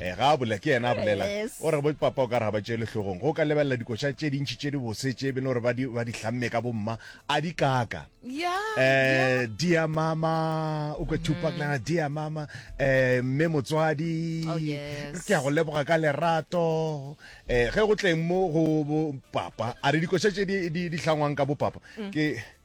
Eh, ga a bolela ke yena a bolela Yes. o re bo papa o ka re ga ba tšele hlogong go ka lebelela dikoša tše dintšhi tše di bose tše e bene gore ba di ba di hlamme ka bomma a di kaka ya eh dear mama o kwe tupac lana dear mama eh mme motswadi Oh, yes. ke a go leboga ka lerato eh ge go tleng mo go bo papa a re dikoša tše di di di hlangwang ka bo papa ke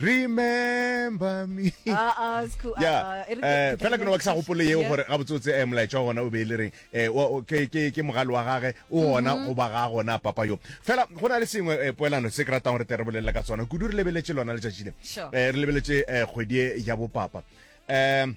remember me ah, ah, eh, fela ke no ba ke sa gopole yeo gore ga botsotse um eh, molaetša wa gona o be e le reng um ke mogale wa gage o mm-hmm. gona go ba ga gona papa yo fela go na le sengwe um poelano se ke ratang gore te re bolelela ka tsona kudu re lebeletse lona letšatši le um re lebeletse um kgwedi ya bopapa um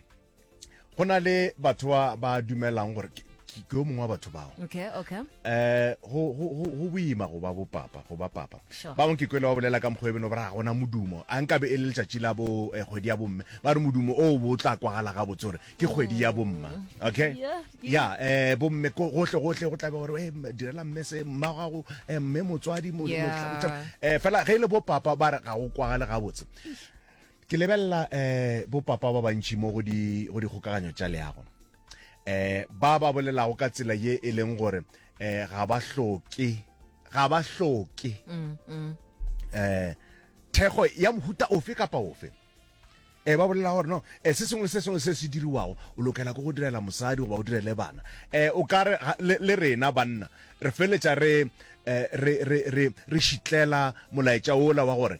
go na le batho ba ba dumelang gore ke ke- ke yo mongwe wa batho bao okay okay eh go go go- go boima go ba bopapa go ba papa Sure. ba bangwe ke kwele ba bolela ka mokgwa e beno ba re ga gona modumo a nkabe e le letšatši la bo eh, kgwedi ya bomme ba re modumo o bo tla kwagala ga botse gore ke kgwedi ya bomma okay Yeah, ya eh bomme ko- gohle gohle go tlabe gore eh, m- direla mme se mma gago eh, mme motswadi mo- Yeah. motlha- motlha- eh fela ge e le bopapa ba re ga go kwagale ga botse Ke lebelela um bopapa ba bantši mo go di go dikgokaganyo tša leago, um ba ba bolelago ka tsela ye e leng gore um ga ba hloke ga ba hloke um thekgo ya mohuta ofe kapa ofe e ba bolela gore no e se sengwe se sengwe se se diriwago o lokela go go direla mosadi goba o direle bana um o ka re le rena banna re feletša re re re re re šitlela molaetša ola wa gore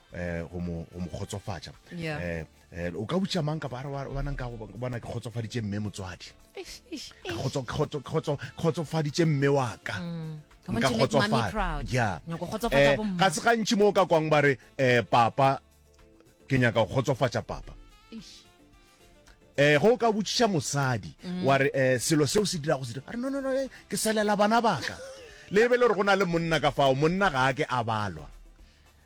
eh go mo go mo khotsofatsa yeah. eh, eh o ka butsa mang ka ba re wa nang ka go bona ke khotsofaditse mme motswadi khotso khotso khotso khotsofaditse mme wa ka mm. nka khotsofala yeah eh ga se gantsi mo ka kwang ba re eh papa ke nyaka go khotsofatsa papa eh go ka butsa mosadi mm. wa re eh selo seo se dira go se dira no no no eh, ke selela bana baka le be le re go na le monna ka fao monna ga a ke a balwa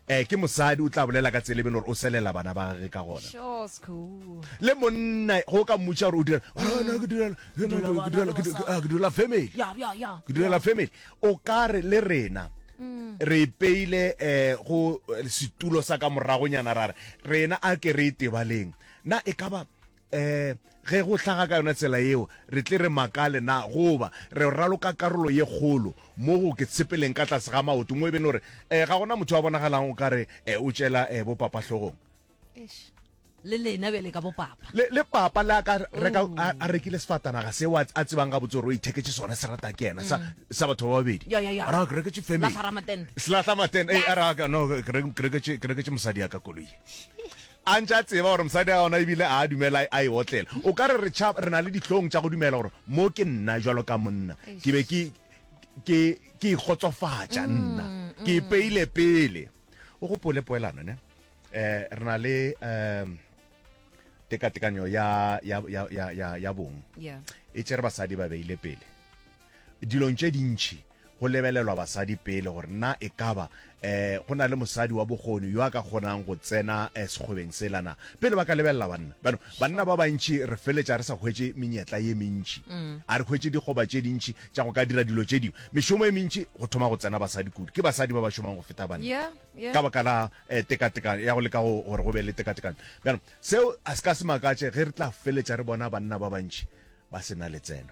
Ee, ke mosadi o tla bolela ka tsela e be le gore o selela bana ba gage ka gona. Sure, school. Le monna ge o ka mmotša gore o dira a ah, na ke direla ke Dula direla- bana ke direla- le ke di- mosadi. ah, ke direla family Ya, ya, ya. ke direla family o ka re le rena re ipeile um go eh, setulo sa ka moragonyana ra re rena a ke re e tebaleng na e ka ba um ge go hlaga ka yona tsela yeo re tle re makale na goba re raloka karolo ye kgolo mo go ke tshepeleng ka tlase ga maoto mo e bene gore um ga gona motho a bonagalang o kare um o tšela um bopapahlogong le lena bjale ka bopapa le, le papa le a ka reka oh. a, a rekile sefatanaga seo a tsebang ga botse gore o itheketse sone se rata ke ena sa mm. batho ba babedi ra ke reketse familyselatlamaten e eh, a raka no ke reketse mosadi ya ka koloi A ntše a tseba gore mosadi ga ona e bile a a dumela a e otlela. O ka re re tšha, re na le dihlong tša go dumela gore mo ke nna bjalo ka monna. Ke be ke, ke, ke ikgotsofatša nna. Ke ipeile pele. O gopole poelano, ne? Eh, re na le, eh, tekatekanyo ya, ya, ya, ya, ya, ya bong. Yeah. E tšere basadi ba beile pele. Dilong tše dintši go lebelelwa basadi pele gore na e ka ba um go na le mosadi wa bokgoni yo a ka kgonang go tsena um sekgwebeng sela na pele ba ka lebelela banna. Bano banna ba bantši re feletša re sa hwetše menyetla ye mentši, a re hwetše dikgoba tše dintši tša go ka dira dilo tše dingwe. Mešomo e mentši go thoma go tsena basadi kudu, ke basadi ba ba šomang go feta banna Yeah, yeah. ka baka la um tekatekano ya go leka go- gore go be le tekatekano. Bjalo seo a se ka se makatše ge re tla feletša re bona banna ba bantši ba se na letseno.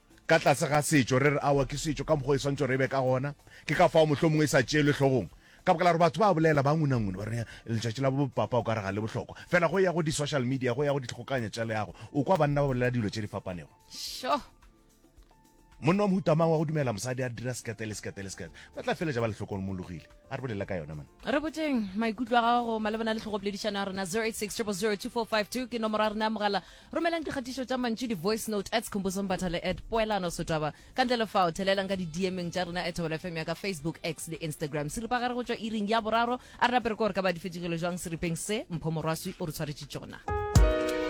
ka tlase ga setšo, re re aowa ke setšo ka mokgwa o e swantšo re e be ka gona, ke ka fao mohlomongwe e sa tšeelwe hlogong, ka baka la gore batho ba a bolela, ba ngunangune, ba re letšatši la bopapa o ka re ga le bohlokwa. Fela go ya go di social media, go ya go dikgokanya tša leago, o kwa banna ba bolela dilo tše di fapanego. Sure. Monna wa mohuta mang wa go dumela mosadi a dira sekete le sekete le sekete? Ba tla feletša ba le hlokomologile. A re bolela ka yona man. Re botšeng maikutlo a gago malebana le tlhogopoledišano ya rena 0860002452 ke nomoro ya rena ya mogala. Romelang dikgatišo tša mantšu, di-voice note, at Skhumbuzo Mbathale at Poelano Sotaba. Ka ntle le fao, thelelang ka di-DM-eng tša rena at Thobela FM ya ka Facebook, X le Instagram. Seripagare go tšwa iring ya boraro. A re nape re ko re ka ba di fetšegile jwang seripeng se Mpho Morwaswi o re tshwaretše tšona.